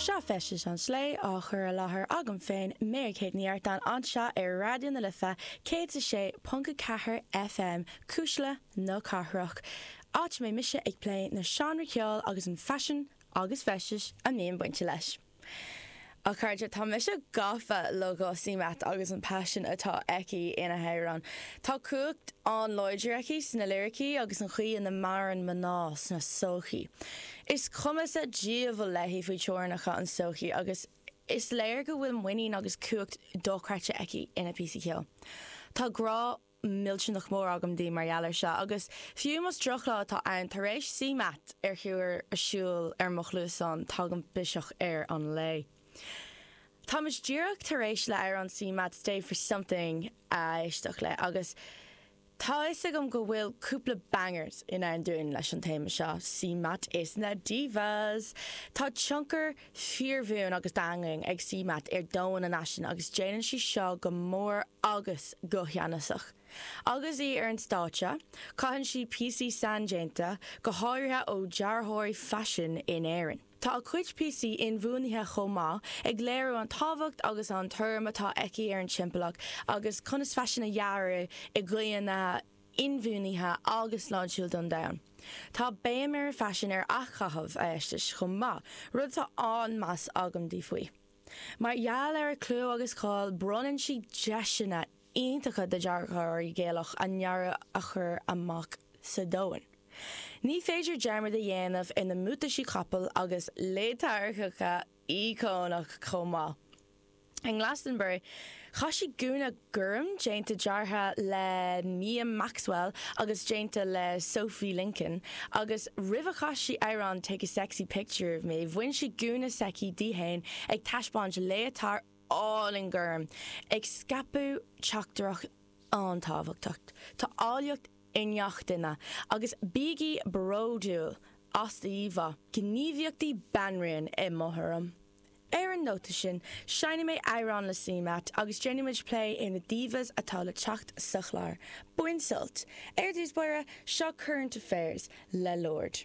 Seo Feisteas an tSlé á chur i láthair agam féin, Mary-Kate Ní Artáin, anseo ar Raidió na Life 106.4 FM, Cuisle na Cathrach, áit a mbeidh mise ag plé na seánra ceoil agus an faisean agus feisteas a mbíonn bainte leis. A chairde, tá mise gafa le CMAT agus an paisean atá aici ina hamhráin. Tá cumhacht an-láidir aici sna liricí agus an chaoi ina maireann mná sna sochaí. Is cuma sa diabhal léi faoi teorainneacha an sochaí agus is léir go bhfuil muinín agus cumhacht dochreidte aici ina píosaí ceoil. Tá grá. millteanach mór agam di mar gheall ar seo, agus fiú más droch-lá atá ann, tar éis CMAT a chur ar siúl ar mo chluasáin, tagann biseach ar an lae. Táimid díreach tar éis le amhrán CMAT Stay For Something a éisteach le, agus tá fhios agam go bhfuil cúpla bangers i ndán dúinn leis an téama seo, CMAT is na divas. Tá tionchar. fíorbhuan agus daingean ag CMAT ar domhan an fhaisin agus déanann sí seo go mór agus go ceannasach. Agus í ar an stáitse, caitheann sí píosaí saindéanta, go háirithe ó dhearthóirí faisin in Éirinn. Tá a cuid píosaí inbhuanaithe chomh maith, ag léiriú an tábhacht agus an tuairim atá aici ar an timpeallacht agus conas faisean a dhearadh i gcaoi na. inbhuanaithe agus sláintiúil don domhan. Tá béim ar a faisean, ar athchaitheamh a feistis chomh maith, rud atá an-meas agam di faoi. Mar gheall ar a clú agus cáil bronnann sí deiseanna iontacha do dearthóirí Gaelach a ndearadh a chur amach sa domhan. Ní féidir dearmad a dhéanamh ar na mbuataisí capaill agus léataird íocónach chomh maith. In Glastonbury, chaith sí gúna gorm déanta deartha le Mia Maxwell agus déanta le Sophie Lincoln agus roimh a chas sí amhrán Take a Sexy Picture of Me, bhain sí gúna s'aici di fhéin ag taispeáint léatard álainn gorm ag scaipeadh teachtaireacht an-tábhachtach. Tá áilleacht. i ngach duine agus bígí bródúil as do íomhá. gníomhaíochtaí banríona i mo thuairim. Ar an nóta sin, seinnfidh mé amhrán le CMAT agus déanfaidh muid plé ar na divas atá le teacht sa chlár. Bain sult! Ar dtús báire, seo Current Affairs le Lorde.